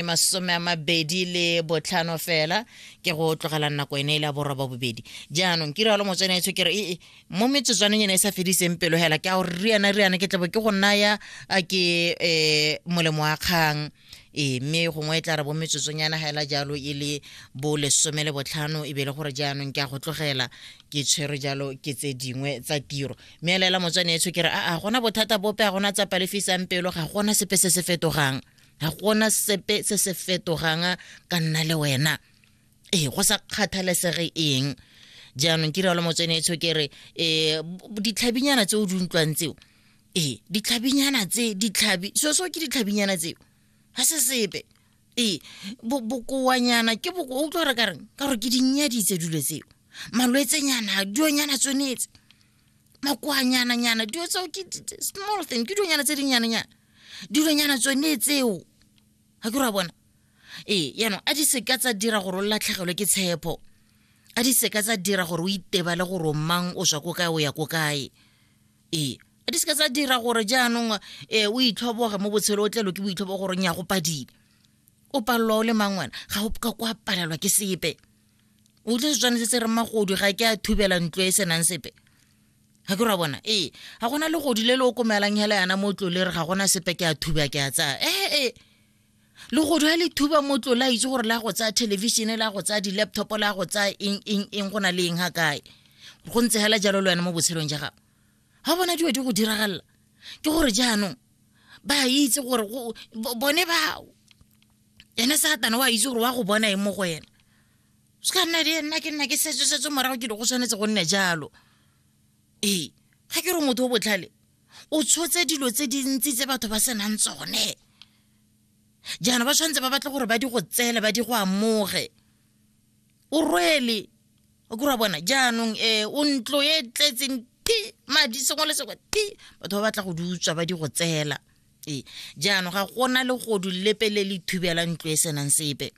e masome a mabedi le botlhano fela ke go tlogela nako ene e le a borwa ba bobedi jaanong ke rialo motswene etsho ke re ee mo metsotswaneng ene e sa fediseng pelo hela ke a gore riana riana ke tlabo ke go naya a ke um molemo wa kgang ee mme gongwe e tla re bo metsotsonyana ga ela jalo e le bo lesome le botlhano e be le gore jaanong ke a go tlogela ke tshwere jalo ke tse dingwe tsa tiro mme elaela motswane etsho ke re aa gona bothata bope ga gona tsa palefisang pelo ga gona sepe se se fetogang ga gona sepe se se fetogang ka nna le wena ee go sa kgathalesege eng jaanong ke rialo motsweneetsho ke re um ditlhabinyana tse o di utlwang tseo ee ditlhabinyana tse ditlhabi so so ke ditlhabinyana tseo ga se sepe ee bokoanyana ke boko o utlwa gore ka reng ka gore ke dinnyaditse dilo tseo malwetsenyana dionyana tsonetse makoanyana nyana dilo tseo ke small thing ke dilonyana tse dinyananyana dilonyana tsone tseo ga ke ra bona ee yaanong a di seka tsa dira gore o latlhegelwe ke tshepo a di seka tsa dira gore o itebale gore o mang o swa ko kae o ya ko kae ee a di seka tsa dira gore jaanong um o itlhoboge mo botshelo o tlelo ke boitlhobo gore nya go padile o palelwa o le mang wena ga o ka kwa palelwa ke sepe utlwe se tshwanetse se re magodu ga ke a thubela ntlo e senang sepe ga ke ra bona ee ga gona le godi le le o komelang hela yana mo tlo le re ga gona sepe ke a thuba ke a tsaya ee ee le godu ga le thuba mo tlo la itse gore la go tsaya thelebišene la go tsaya di-laptop la go tsaya eng eng eng go na le eng ga kae go ntse hela jalo le wena mo botshelong ja gago ga bona dilo di go diragalela ke gore jaanong ba itse gore bone ba ene satane wa itse gore wa go bona e mo go ena se ka nna le nna ke nna ke setse setse morago ke di go tshwanetse go nne jalo ee ga ke re motho o botlhale o tshotse dilo tse dintsi tse batho ba senang tsone jaana ba tshwanetse ba batle gore ba di go tseele ba di go amoge o rwele o kura bona jaanong um o ntlo e tletseng ti madi sengwe le sengwe ti batho ba batla go di utswa ba di go tseela ee jaanong ga gona legodu lepe le le thubela ntlo e senang sepe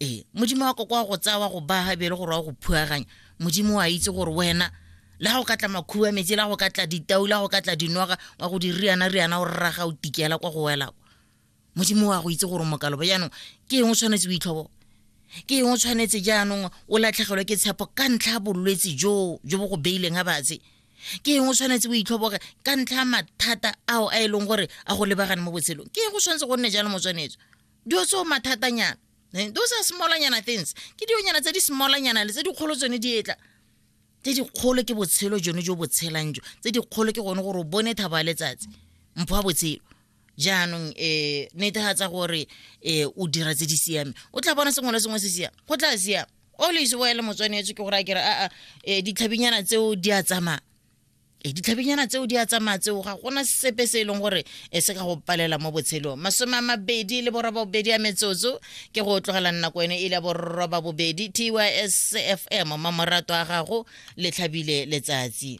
ee modimo wa koko wa go tsaya wa go baga bele gore wa go phuaganya modimo wa itse gore wena le ga o ka tla makhuba metsi le ga go ka tla ditau le ga go ka tla dinoga wa go di riana riana o rraga o tikela kwa go wela modimo wa go itse gore mokalobo jaanong ke eng o tshwanetse o itlhobo ke eng o tshwanetse jaanong o latlhegelwe ke tshepo ka ntlha ya bolwetse joo jo bo go beileng a batse ke eng o tshwanetse o itlhoboge ka ntlha ya mathata ao a e leng gore a go lebagane mo botshelong ke eng go tshwanetse go nne jalo motswanetso dilo tseo mathatanyana eh, those are smallanyana things ke dionyana tse di smallanyana le tse dikgolo tsone di etla tse dikgolo ke botshelo jone jo botshelang jo tse dikgolo ke gone gore o bone thabo ya letsatsi mpho wa botshelo jaanong um netefatsa gore um o dira tse di siame o tla bona sengwe le sengwe se siame go tla siama o le ise boele motswanetse ke gore a kere aa um ditlhabinyana tseo di a tsamaya e ditlhabinyana tseo di a tsamaya tseo ga gona sepe se e leng gore e se ka go palela mo botshelong masome a mabedi le boroba bobedi ya metsotso ke go tlogela nako ene e le boroba bobedi tys fm mamorato a gago le tlhabile letsatsi